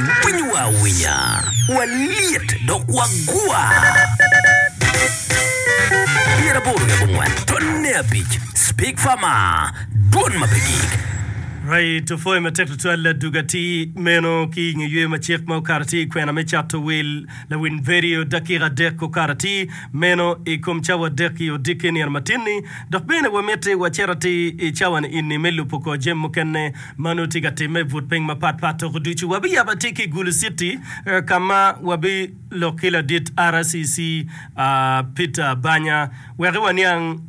Winy wa awinya, walyet dok wagwa. Pyeraboro ki abongwen tonne abic, Spig Fama, dwon ma pe gik. Right of way matek tutwal Ladug atir meno ki i nge yweyo macek ma okato atir i kwena me cato wil lawiny vedio dakika adek okato atir meno i kom cawa adek i odikke i nino matin-ni. Dok bene wamiti wacit atir i cawa-ni ini me lubo kor jami mukene ma nongo tye ka timme i but piny mapatpat. Tuku ducu wabiyabo atika i Gulu City ka ma wabilok ki ladit RCC, Peter Banya wek waniang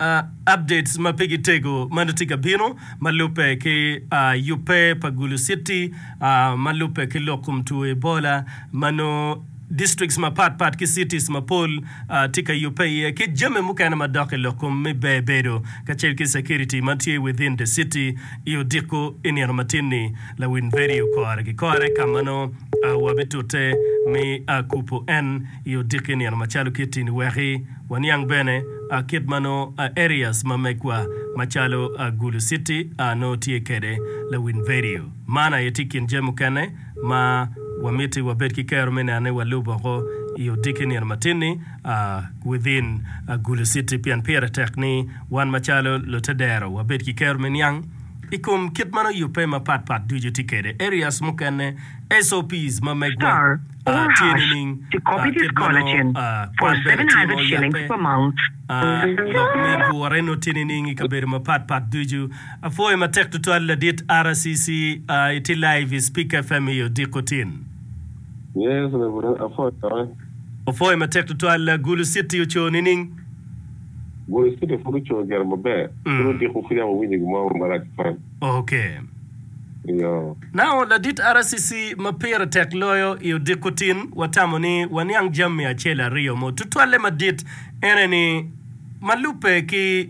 updates ma pigi tego ma nongo tye ka bino ma lubbe ki yubbe pa Gulu City ma lubbe ki lok kom two Ebola ma nongo districts mapat pat ki cities mapol tye ka yubbe iye, ki jami mukene madok i lok kom me ber bedo kacel ki security ma tye within the city i odiko i nino matin-ni. Lawil vedio kore ki kore ka ma nongo wabitute me kubo en i odiki nino macalo kitti-ni wek waniang bene kit ma nongo areas ma megwa macalo Gulu City nongo tye kwede. Lawil vedio man aye tye i kin jami mukene ma wamiti wabed ki kero me neno ni walubo woko i odiki nino matin-ni, within agulu citi, pien pire tek ni wan macalo lute dero wabed ki kero me niang i kom kit ma nongo yubbe mapat pat ducu tye kwede, areas mukene, SOPs ma megwa tye nining, kit ma nongo kwan bene tye ma oyabbe, lok me gure nongo tye nining i kabedo mapat pat ducu. Apwoyo matek tutwal ladit RCC I tye live I speaker FM I odiko tin. Yes reverend Apoyo cokke. Wapwoyo matek tutwal Gulu city oco nining? Gulu city pud oco gire maber pud odiko pud yam awinyo gimo mo marac tutwal. Ok. Eyoo. Now ladit RCC ma pire tek loyo I odiko tin watamo ni waniang jammi acel aryo mo tutwalle madit ene ni ma lubbe ki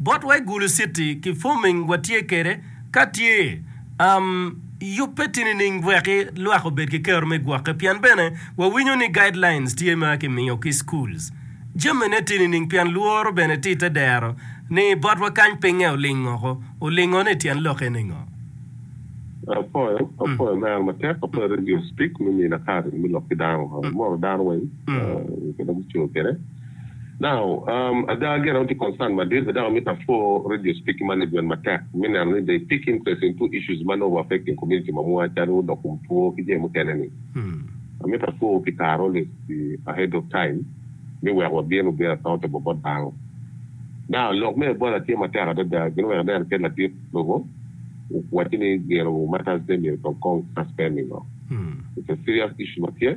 Bot wa i Gulu city ki forming wa tye kede ka tye um yubbe ti nining weki lwak obed ki kero me gwoke pien bene wa winyo ni guidelines tye ma ki miyo ki schools jami ne ti nining pien lworo bene ti te dero ni bot wa kany pinge olingo oko olingo ne tyen lok ene ngo? Apoyo apoyo me ano matek apoyo radio speak me mine kare me lok ki dano moro dano weng kede mucoo kede. Now, um, ada agera wun tye concerned madit, bed dok amito apwoo radio speaking management matek me neno ni they pick interest in two issues ma nongo wa affecting community ma mwa calo lok kom two ki jami mukene ni. Amito apwoowu pi kare always be ahead of time me weko wabin wubin athote bo bot dano. Now, lok me Ebola tye matek adada, gin weko aneno kit latit lobo owaci ni gino matters ne myero tong kong suspending o. It's a serious issue ma tye.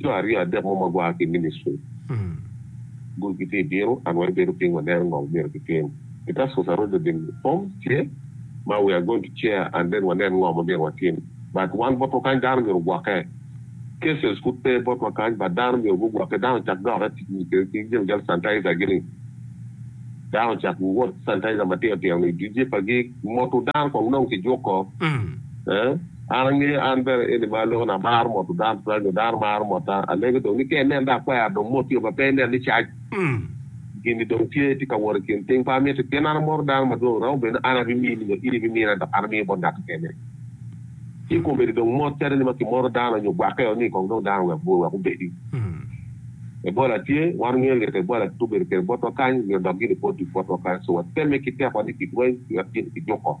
Jo aryo adek mo ma gua ki i ministri gudo gitye i bino, an wa ibedo piny waneno ngo myero gitim. I Tarsus aroco oding form tye ma we are going to chair and then wanen ngo ma myero watim but wan botwa kany dano myero ogwokke. Cases pud pe botwa kany but dano myero gugwokke dano ocak dokke ki jal sanitizer gi ni dano ocak wot ki sanitizer matino tino ni i duce pa gi moto dano kong nong kijuko. An angeyo an bene eni ma aloko ni amaro moto dano tutwal nyo dano maro mota alege dong ni keni nen dong akwero dong mot tye ma pe inen ni cac gini dong tye tye ka wot ikin piny pa amito pien an amoro dano madwong romo bedo ni an abimini nyo in ibimina dok an amiyo bot ngat kekene ci komedi dong mot calo ni ma kimoro dano nyo gwake o ni kong dong dano wek bur wek obedi Ebola tye wan ongeyo lyeto Ebola kit obedo kede botwa kany nyo dok gini pwod duk botwa kany so watemme ki tekwa ni ki dweny wek gini kijuko.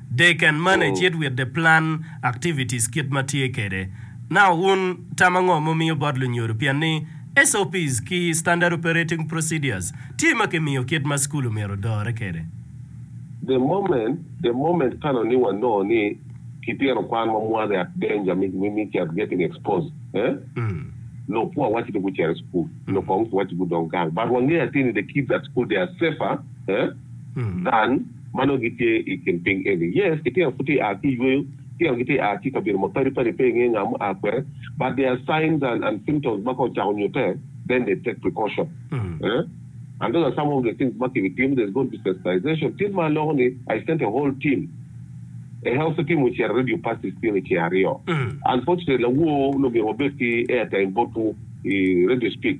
They can manage it with the plan activities kit ma tye kede. Now wun tama ngo mumiyo bot lunyodo pien ni SOPs ki standard operating procedures tye ma ki miyo kit ma school omyero odore kede. The moment the moment kano ni wa noo ni ki tyeno kwan wa mwaze at danger mi mi mi at getting exposed eh noo poor waci ni gucere school noo kong ki waci gudong gang but wa ngeyo atir ni the kids at school they are safer eh than ma nongo gitye i kin piny eni. Yes, litino pud tye ka a ki i yweyo, litino gitye ka a ki i kabedo mapadi padi, pe ingeyo nga mua kwede, but there are signs and and symptoms ma ka ocako nyutte, then they take precaution eeh, and those are some of the things ma ki bi timo, there's going to be sensitization, tit ma aloko ni I sent a whole team, a healthy team ocito Radio Pacis Piny i ceng aryo, unfortunately awoo nongo myero wabed ki airtime botwu i Radio Speak,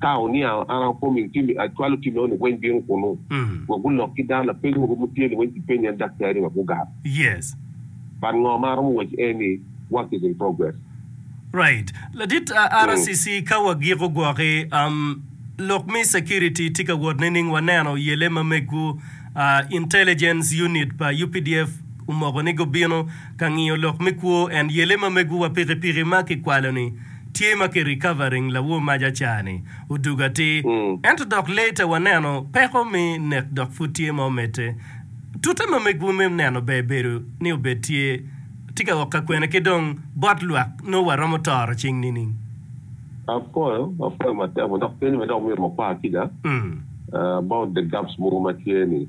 Ka oniango, an akomo i tim, acwalo tim eno niweny bino kunu, wa gulok ki dano lapeny mogo mo tye niweny kipenyo en daktari wa gugar. But ngo ma aromo waco en ni work is in progress. Right ladit RCC ka wa giko gwoki um lok me security tye ka wot nining wa neno yele ma megu uh intelligence unit pa updf omoko ni gubino Ka ngiyo lok me kwo en yele ma mego wa piki piki ma ki kwalo ni tye ma ki recovering lawo mac acar ni odug atir ento dok later wa neno peko me nek dok pud tye ma omedde tute ma mego me neno ber bedo ni obed tye tye ka ok ka kwene ki dong bot lwak nongo wa romo toro cing nining. Apwoyo apwoyo matek wa dok penyo ma dok myero wa kwa ki ga about the gaps mogo ma tye ni.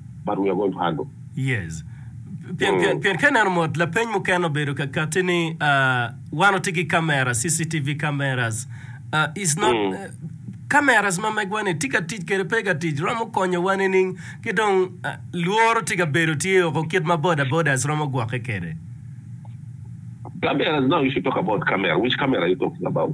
but we are going to handle. Yes. Pien, pien, pien ka ineno mot, lapeny mukene obedo ka kati ni ah, wan watye ki kamera, CCTV cameras. Ah, is not, Mm. eh, cameras ma megwa-ni tye ka tic kede pe ka tic, romo konyowa nining? Ki dong ah, lworo tye ka bedo tye oko kit ma boda bodas romo gwokke kede. Cameras now, you should talk about camera. Which camera are you talking about?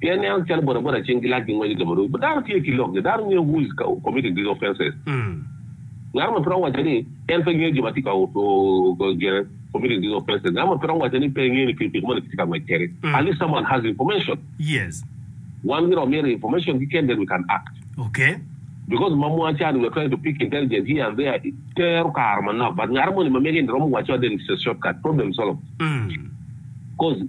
pien en calo bodaboda cing gilac gi ngwec ilobo rwod. Dano tye ki lokgi, dano ngeyo who is committing these offences. Ngat mo pe romo waco ni en pe ngeyo jo ma tye ka committing these offences. Ngat mo pe romo waco ni pe engeyo ni pikipiki moni kitye ka ngwec kwede. At least someone has information. Wan giromo mito information keken then we can act. Because ma mwaa cani we are trying to pick intelligent here and there tero kare manok but ngat moni ma mege ni romo waco adel it's a shortcut, problem solved. Cause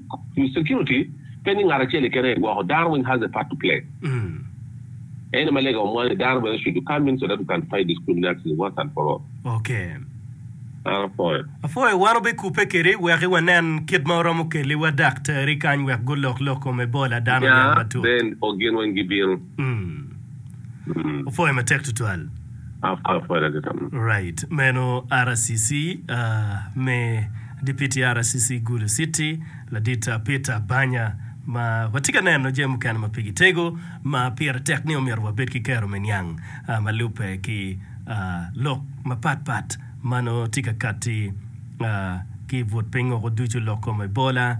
security. Pe ni ngat acel keken aye gwoko, Darwin has a part to play. Ene ma lega omwano ni dano bene cucu ka means so that we can fight discriminatiously once and for all. Okay. An apwoyo. Apwoyo, wan obikubbe kedi weki wanen kit ma oromo keli wa daktari kany wek gulok lok kom Ebola dano niang matut. Nya, Ben, o gin weng gibino. Mm. Opwoyo matek tutwal. Right. Meno RCC me Dipiti RCC Gulu City, Ladit Peter Banya, ma watye ka neno jami mukene ma pigi tego ma pire tek ni omyero wabed ki kero me niang ma lubbe ki lok mapat pat ma nongo tye ka katti ki i but piny woko ducu, lok kom Ebola,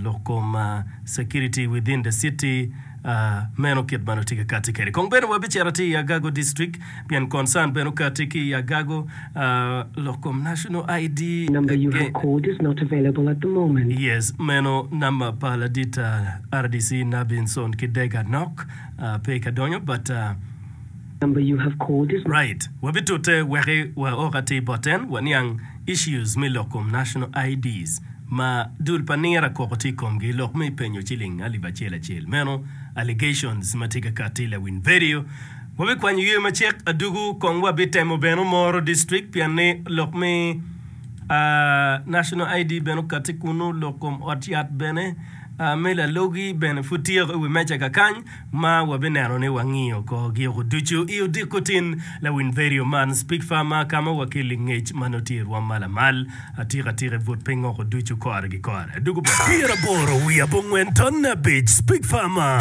lok kom security within the city. Meno kit ma watye ka kati kwede. Kong bed ni wabicito atir i Agago District, pien concern bene okati ki i Agago, lok kom National ID. Number you have called is not available at the moment. Yes, meno number pa ladit RDC Nabinson Kidega nok pe ka donyo but. number you have called is. Right, wabitute wek wa ok atir bot en waniang issues me lok kom national IDs ma dul pa nira koko tye ikomgi lok me penyo ciling alip acel acel meno allegations ma tye ka kati lawiny vedio wabikwanyo yer macek adugu kong wa bitemo bene moro district pien ni lok me national ID bene okati kunu lok kom ot yat bene me lalogi bene pud tye iwi meja kakany ma wabineno ni wangiyo korgi oko ducu i odiko tin lawiny vedio man, Speak Far ma ka ma wakelli ngec ma nongo tye i rwom ma lamal atika tika i but piny oko ducu kore ki kore. Adwogo boti. Pyeraboro wiye abongwen ton abic, Speak Far ma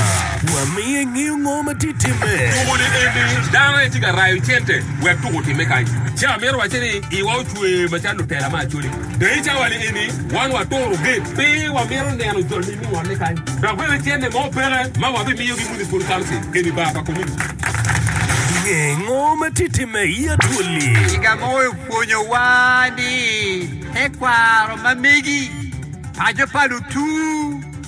wa miyo ingeyo ngo ma tye timme. Tuko ni eni dano aye tye ka rayo cente wek tuko otimme kany. Ci amito wacce ni iwa ocwer macalo lutela me Acholi. Dayicawali eni. Wan waturogi pe wamito neno jol ni ningonne kany dok bene cente mo peke ma wabimiyogi municipal council keni bar pa community. Nge ngo ma tye timme i Atwoli? Kiga mo opwonyowa ni tekwaro ma megi paco pa lutu.